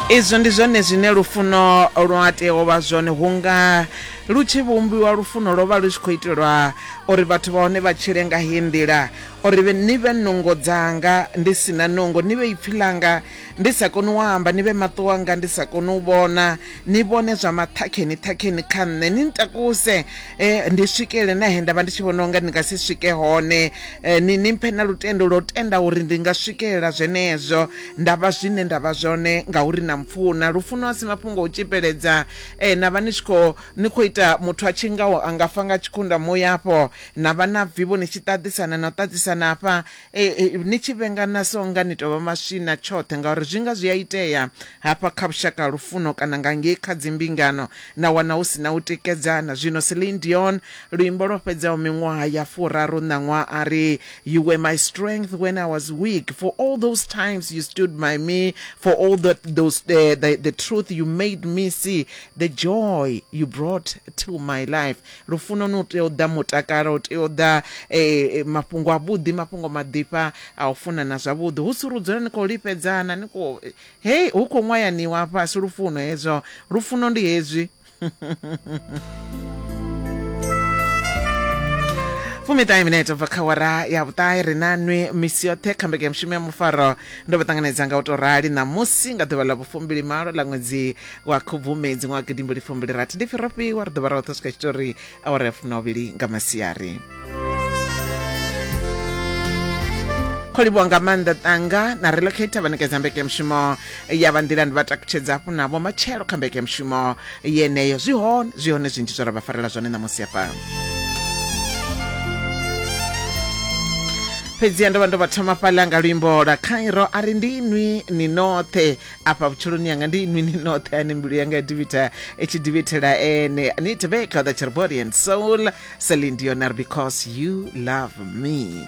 izwo ndi zwone zwine lufuno lwa tea u vha zwone hunga lu tshi vhumbiwa lufuno lwo vha lu tshi khou itelwa uri vhathu vha hone vha tshile nga heyi nḓila uri ni vhe nungo dzanga ndi si na nungo ni vhe ipfhi ḽanga ndi sa koni u amba ni vhe maṱo wanga ndi sa koni u vhona ni vhone zwa maṱhakheni ṱhakheni kha nṋe ni ntakuse um ndi swikele na he nda vha ndi tshi vhona unga ndi nga si swike hone um ni ni mphe na lutendo lwo tenda uri ndi nga swikelela zwenezwo Nda vha zwine nda vha zwone ngauri na mpfuna. Lufuno a si mafhungo a u tshipeledza. Ee, na vha ni tshi khou, ni khou ita muthu a tshi ngaho a nga fa nga tshikhunnda muya afho. Na vha na vivho ni tshi ṱaḓisana na u ṱaḓisana hafha, e, e, ni tshi vhengana so unga ni tou vha maswina tshoṱhe ngauri zwi nga zwi a itea hafha kha vhushaka ha lufuno kana nga ngei kha dzimbingano na wana hu si na u tikedzana. Zwino Celine Dion, luimbo lwo fhedzaho miṅwaha ya furaru ṋaṅwaha a ri, You were my strength when I was weak. For all those times you stood by me, for all the, those the, the, the truth you made me see, the joy you brought to my life. Lufuno no tea u ḓa mutakalo, u tea u ḓa eh, eh, mafhungo a vhuḓi, mafhungo maḓifha a u funana zwavhuḓi. Hu si ri dzula ni khou lifhedzana, ni khou hey, hu khou ṅwayaniwa fhasi lufuno hezwo. Lufuno ndi hezwi. fumiṱahe minete bva kha wara ya vhuṱahe ri na nwi misi yoṱhe kha mbeke ya mushumo ya mufaro ndo vha ṱanganedza nga u tou rali ṋamusi nga ḓuvha ḽa vhufumbili malo ḽa ṅwedzi wa khubvumedzi ṅwaha gidimbili fumbili rathi ndi pfi ro fhiwa ri ḓo vha ra oṱhe swika tshitori awara ya fuminovhili nga masiari kho livhuwa nga maanḓa ṱanga na relocator vha ṋekedza mbekemushumo ya vha nḓilani vha takutshedza hafhu navho matshelo kha mbekemushumo yeneyo zwi hone zwi hone zwinzhi zwo ra vha farela zwone ṋamusi hafha fhedziha ndo vha ndo vha thoma fhaḽa nga luimbo lwa khairo a ri ndi inwi ni noṱhe afha vhutshiloni yanga ndi inwi ni noṱhe ane mbilu yanga ya divitha i tshi divithela ene ni teveka the cherbody and soul celine dionar because you love me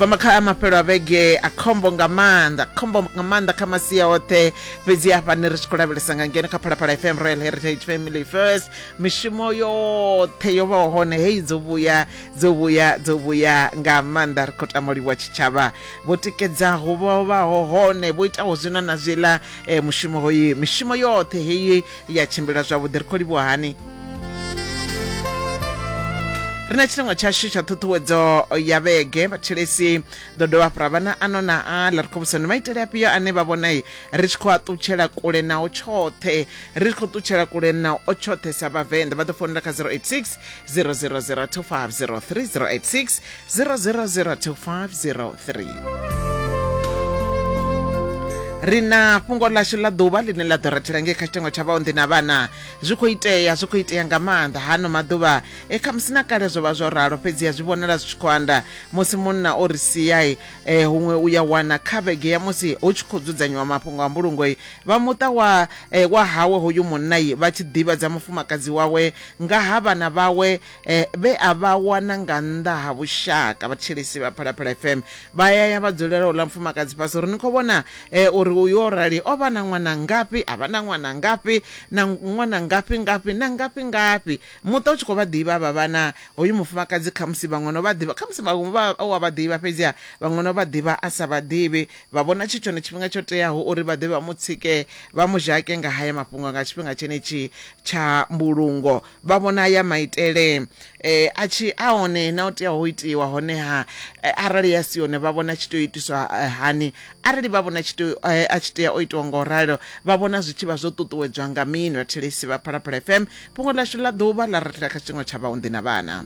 pamakha mafhelo a vhege a khombo nga maanḓa khombo nga maanḓa kha masia oṱhe fhedzi hafha ni ri tshi khou lavhelesa nga ngeno kha phalaphala fm royal heritage family first mishumo yoṱhe yo vhaho hone hei dzo vhuya dzo vhuya dzo vhuya nga maanḓa ri khou tama livhuwa tshitshavha vho tikedzaho vho vhaho hone vho itaho zwino na zwiḽa eh, mushumo hoyu mishumo yoṱhe heyi ya tshimbila zwavhuḓi ri khou livhuwa hani ri na tshilengwa tshashu tsha ṱhuṱhuwedzo ya vhege vhathelesi ḓo dovha fhura vhana ano na aḽa ri khou vhusa ndi maitele afhio ane vha vhona ri tshi khou a ṱutshela kule nao tshoṱhe ri tshi khou ṱutshela kule nao tshoṱhe sa vhavenḓa vha ḓo founela kha 086 000250386 0002503 ri na fhungo ḽashu ḽa ḓuvha ḽine ḽa ḓo rathela ngei kha tshitengo tsha vhaonḓi na vhana zwi khou itea zwi khou itea nga maanḓa hano maḓuvha e khamusi na kale zwo vha zwo ralo fhedziha zwi vhonala zwi tshi khou anda musi munna o ri siai e, huṅwe u ya wana kha vhege ya musi hu tshi khou dzudzanyiwa mafhungo a mbulungoi vha muṱa wa e, wa hawe hoyu munnai vha tshi ḓivhadza mufumakadzi wawe nga ha vhana vhawe vhe a vha wana nga nnḓa ha vhushaka vhatshilisi vha phalaphala fm vha yaya vha dzulela u ḽa mfumakadzi fhasi uri ni khou vhona eh, uri uyu o rali o vha na ṅwana ngafhi a vha na ṅwana ngafhi na ṅwana ngafhi ngafhi na ngafhi ngafhi muṱa u tshi khou vha ḓivha vha vhana hoyu mufumakadzi khamusi vhaṅwe no vha ḓivha khamusi vhaṅwe vha wa vha ḓivha fhedziha vhaṅwe no vha ḓivha a sa vha ḓivhi Vha vhona tshi tshone tshifhinga tsho teaho uri vha ḓe vha mu tsike, vha mu zhake nga haya mafhungo nga tshifhinga tshenetshi tsha mbulungo. Vha vhona aya maitele e a tshi a one na o teaho u itiwa, honeha e arali a si one vha vhona a tshi tea u itiswa hani? Arali vha vhona tshi tea a tshi tea o itiwa nga u ralo, vha vhona zwi tshi vha zwo ṱuṱuwedzwa nga mini? Vhathetshelesi vha Phalaphala FM fhungo ḽashu ḽa ḓuvha ḽa ri thela kha tshiṅwe tsha vhaunḓi na vhana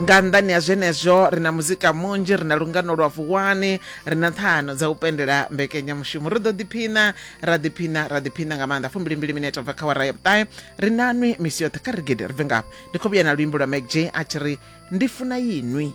nga nnḓani ha zwenezwo ri na muzika munzhi ri na lungano lwa vuwani ri na ṱhano dza u pendela mbekenyamushumo ri ḓo ḓiphina ra ḓiphina ra ḓiphina nga maanḓa fumbilimbili minete bva kha wara ya vhuṱahe ri na nwi misi yoṱhe kha rigede ri bve ngafho ndi khou vhuya na luimbo lwa mcj a tshi ri ndi funa yinwi